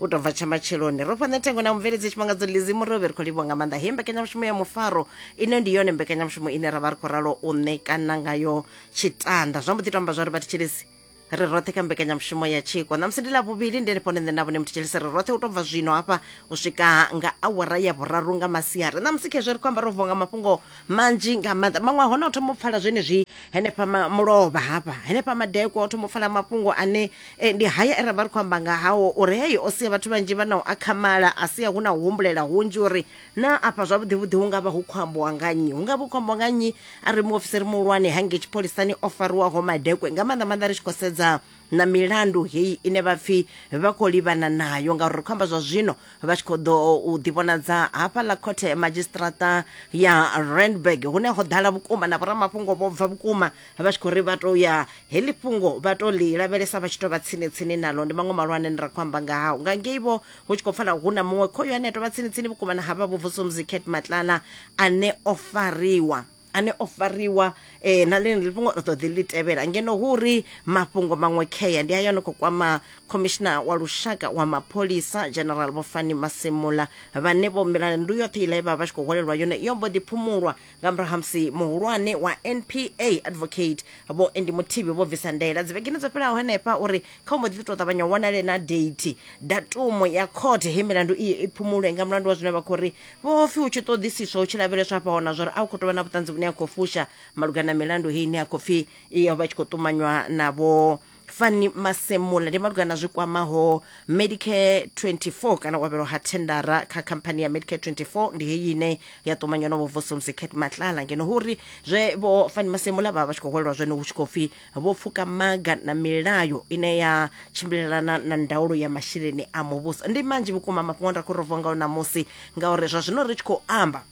u tou bva tsha matsheloni ro fhana thengo na mubveledzi tshifhangadzo lizi murovhe ri khou livhuwa nga maanḓa he mbekanyamushumo ya mufaro ine ndi yone mbekanyamushumo ine ra vha ri khou ralo u ṋekana ngayo tshitanda zwa mbo ḓi to amba zwa ri vhathetshelesi ri roṱhe kha mbekanyamushumo ya tshiko ṋamusi ndi ḽa vhuvhili ndi henefho nṋe na vhone muthetsheli ri roṱhe u tou bva zwino hafha u swika nga awara ya vhuraru nga masiari ṋamusi khezwo ri khou amba ro vuwa nga mafhungo manzhi nga maanḓa maṅwe a hone o thoma u pfala zwenezwi henefha mulovha hafha henefha madekwa o thoma u pfala mafhungo ane E, ndi haya e ra vha ri khou amba nga hao uri heyo o sia vhathu vhanzhi vha na u akhamala a sia hu na u humbulela hunzhi uri na afha zwavhuḓivhuḓi hu nga vha hu khou ambiwa nga nnyi hu nga vha hu khou ambiwa nga nnyi a ri muofisiri muhulwane hangei tshipholisani o fariwaho madekwe nga maanḓa maanḓa ri tshi khou sedza na milandu heyi ine vha pfhi vha khou livhana nayo ngauri ri khou amba zwa zwino vha tshi khou ḓo u ḓivhonadza hafha ḽa khothe madzhisiṱirata ya randburg hune ho ḓala vhukuma na vhoramafhungo vho bva vhukuma vha tshi khou ri vha tou ya heḽi fhungo vha to ḽi lavhelesa vha tshi to vha tsini tsini naḽo ndi maṅwe malwane ni ra khou amba nga hao nga ngei vho hu tshi khou pfala hu na muṅwe khoyo ane a tovha tsini tsini vhukuma na havha vhuvusumzi cat matlala ane o fariwa ane o fariwa eh, na ḽene ḽi fhungo ri ṱoḓi ḽi tevhela ngeno hu ri mafhungo maṅwe khea ndi ayo no khou kwama khomishina wa lushaka wa mapholisa general vhofani masimula vhane vho milandu yoṱhe iḽa ye vha vha tshi khou hwalelwa yone yo mbo ḓi phumulwa nga murahu ha musi muhulwane wa npa advocate vho endi muthivhi vho bvisa ndaela dzivhegeni dzo fhelaho henefha uri kha u mbo ḓi tou ṱavhanya u wanale na date datumu ya court he milandu iyo i phumulwe nga mulandu wa zwine vha khou ri vho pfi hu tshi ṱoḓisiswa hu tshi lavheleswa hafha hona zwa uri a hu khou tou vha na vhuṱanzi vhune ha khou fusha malugana na milandu heyi ine ya khou pfi iyo vha tshi khou ṱumanywa na vho fani masemula ndi malugana na zwi kwamaho medicare 24 kana u avhelwa ha thendara kha khamphani ya medicare 24 ndi heyi ine ya ṱumanywa na vhovuso mzicat matlala ngeno hu uri zwe vho fani masemula vha vha tshi khou hwelelwa zwone hu tshi khou pfi vho pfuka maga na milayo ine ya tshimbilelana na ndaulo ya masheleni a muvhuso ndi manzhi vhukuma mafhungo nda khou rovongaho ṋamusi ngauri zwa zwino ri tshi khou amba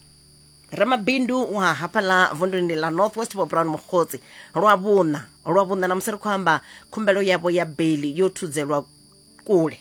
ramabindu wa hafha ḽa vunduni ḽa north west vho brown mukgotsi lwa vhuṋa lwa vhuṋa na musi ri khou amba khumbelo yavho ya beli yo thudzelwa kule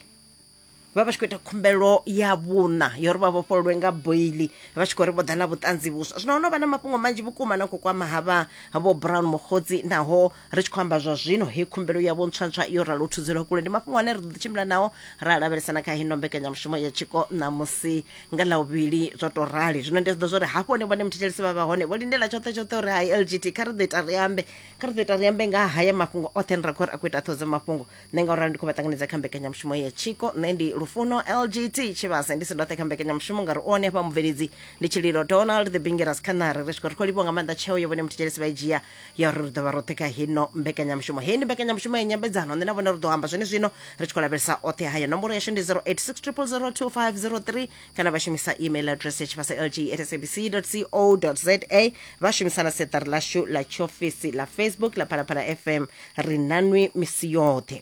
vha vha tshi khou ita khumbelo ya vhuṋa yo ri vha vhofhololwe nga boili vha tshi khou ri vho ḓa na vhuṱanzi vhuswa zwino ho no vha na mafhungo manzhi vhukuma na khou kwama havha vho brown mokgotsi naho ri tshi khou amba zwa zwino he khumbelo yavho ntswantswa yo ralo thudzelwa kule ndi mafhungo ane ri ḓo tshimbila nao ra lavhelesana kha hino mbekanyamushumo ya tshiko ṋamusi nga ḽa vhuvhili zwo to rali zwino ndi ḓo zwa uri hafho hone vhone muthetshelesi vha vha hone vho lindela tshoṱhe tshoṱhe uri hai lgt kha ri ḓo ita ri ambe kha ri ḓo ita ri ambe nga haya mafhungo oṱhe ni ra khou ri a khou ita ṱhodzo mafhungo nṋe nga uralo ndi khou vha ṱanganedza kha mbekanyamushumo ya tshiko nṋe ndi lufuno lgt tshivhase ndi si ndoṱhe kha mbekanyamushumo ngauri u one hafha mubveledzi ndi tshililo donald the bingeras khanari ri swika ri khou livhiwa nga maanḓa tsheo yo vhone muthetshelesi vha i dzhia ya uri ri ḓo vha roṱhe kha hino mbekanyamushumo heyi ndi mbekanyamushumo ya nyambedzano nṋe na vhone ri ḓo amba zwene zwino ri tshi khou lavhelesa oṱhe haya nomboro yashu ndi 0860002503 kana vha shumisa email address ya tshivhasa lg at sabc co za vha shumisa na seṱari lashu ḽa tshiofisi ḽa facebook ḽa phalaphala fm ri nanwi misi yoṱhe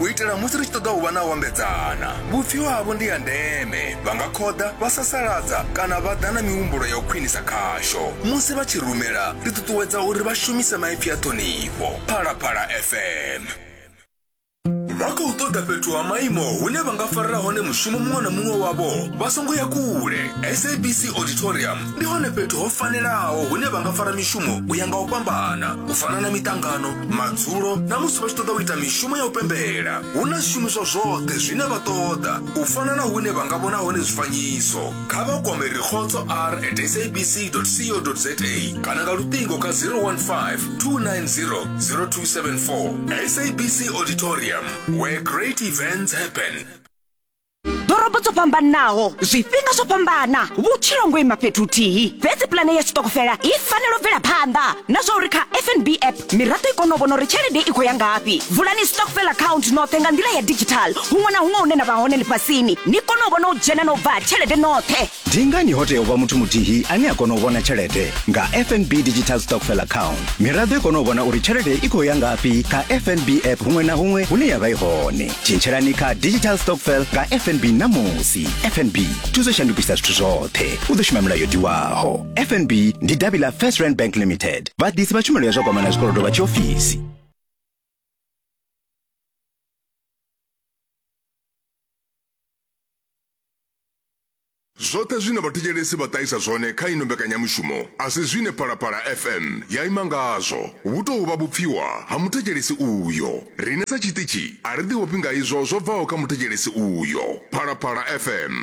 u itela musi ri tshi ṱoḓa u vha na u ambedzana vhupfiwa havho ndi ya ndeme vha nga khoḓa vha sasaladza kana vha ḓa na mihumbulo ya u khwinisa khasho musi vha tshi rumela ri ṱuṱuwedza uri vha shumise maipfi a ṱhonifho phalaphala fm vha khou ṱoḓa fhethu ha maimo hune vha nga farela hone mushumo muṅwe na muṅwe wavho vha songo ya kule sabc auditorium ndi hone fhethu ho fanelaho hune vha nga fara mishumo u ya nga u fhambana u fana na miṱangano madzulo na musi vha tshi ṱoḓa u ita mishumo ya u pembela hu na zwishumiswa zwoṱhe zwine vha ṱoḓa u fana na hune vha nga vhona hone zwifanyiso kha vha kwame rikhotso r at sabc co za kana nga luṱingo kha 015 290 0274 sabc auditorium where great events happen ḓorobo dzo fhambanaho zwifhinga zwo fhambana vhutshilo ngo ima fhethu huthihi fhedzi pulane ya sitokofela i fanela u bvela phanḓa na zwa uri kha fnb app miraḓo i kone u vhona uri tshelede i khou ya ngafhi vulani stokfel account noṱhe nga nḓila ya digital huṅwe na huṅwe hune na vha hone ḽifhasini ni kone u vhona u dzhena na u bva tshelede noṱhe ndi ngani ho tea u vha muthu muthihi ane a kona u vhona tshelede nga fnb digital stockfell account miraḓo i kona u vhona uri tshelede i khou ya ngafhi kha fnb app huṅwe na huṅwe hune ya vha i hone tshintshelani kha digital stockfell nga fnb ṋamusi fnb thuso shandukisa zwithu zwoṱhe u ḓo shuma milayo diwaho fnb ndi davhi ḽa first rand bank limited vhaḓisi vha tshumelo ya zwa kwamana zwikolodo vha tshiofisi Zwoṱhe zwine vhathetshelesi vha ṱahisa zwone kha ino mbekanyamushumo a si zwine Phalaphala FM ya ima ngazwo. Hu tou vha vhupfiwa ha muthetshelesi uyo. Riṋe sa tshiṱitshi a ri ḓivhofhi nga izwo zwo bvaho kha muthetshelesi uyo. Phalaphala FM.